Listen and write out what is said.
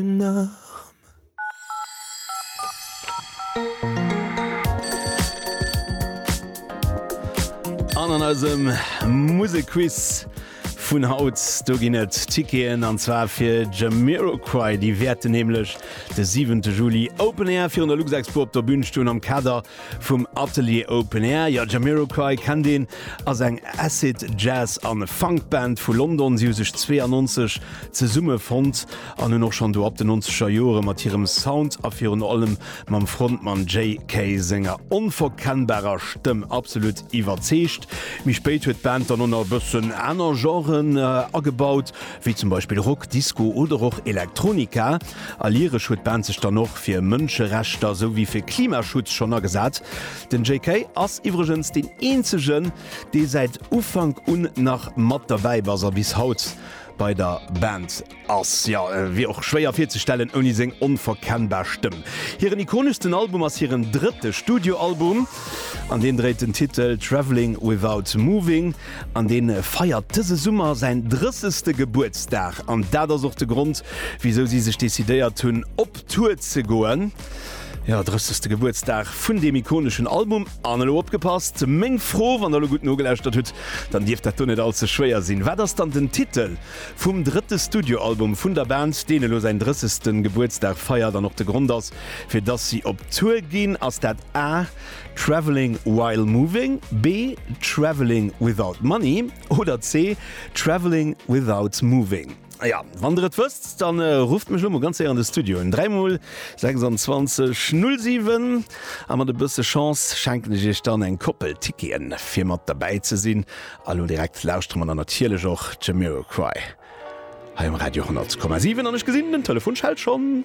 enorm. An an eisem Musekquiz vun haut, do ginn et Ticketen, an zwar fir Jamiroquai. Déi wäerten nämlech de 7 Juli Open Air virun der Luxexpo op der Bün stoen am Kader vum Atelier Open Air. Jo, Jamiroquai kennt een, ass eng Acid-Jazz an Funk-Band vu London. Si hu sech 92 zesumme fonnt. an hunn och schonn do ab den nonzeger Jore mat hirem Sound a virun allem mam Frontmann JK. senger onverkennbarer Stëmm absolut iwwerzeegt. Méi spéit huet d'Band dann och nach e bëssen aner Genren agebaut, wéi zum Beispill Rock, Disco oder och Elektronika. A lyresch huet d'Band sech dann och fir Mënscherechter esou wéi fir Klimaschutz schonn agesat. Den JK. ass iwwregens deen eenzegen, dee säit Ufank un nach mat derbäi bass a bis haut bei der Band. Ass, jo. Wier och schwéier virzestellen ouni seng onverkennbar Stëmm. Hiren ikoneschsten Album ass hiren drëtte Studioalbum an deen dréit den Titel Travelling Without Moving an. Dee feiert dëse Summer säin drëssegste Gebuertsdag an dat ass och de Grond, wisou si sech decidéiert hunn, op Tour ze goen. Jo, drëssegste Gebuertsdag vun deem ikoneschen Album. An elo opgepasst, meng Fro, wann der elo gutt nogelauschtert hutt, dann dierft dat do net all ze schwéier sinn, Wat ass dann den Titel? Vum drëtte Studioalbum vun der Band, deen elo säin 30. Gebuertsdag feiert an och de Grond ass, fir dass si op Tour ginn, ass dat A Travelling While Moving, B Travelling Without Money oder C Travelling Without Moving. Jo, wann der et wësst, da rufft mech elo mol ganz séier an de Studio un, 3 mol 26 07, a mat e bësse Chance schenken ech iech dann eng Koppel Ticketen, fir mat derbäi ze sinn A lo direkt lauschtere mer dann natierlech och Jamiroquai hei um Radio 100,7 an ech gesinn den Telefon schellt schonn.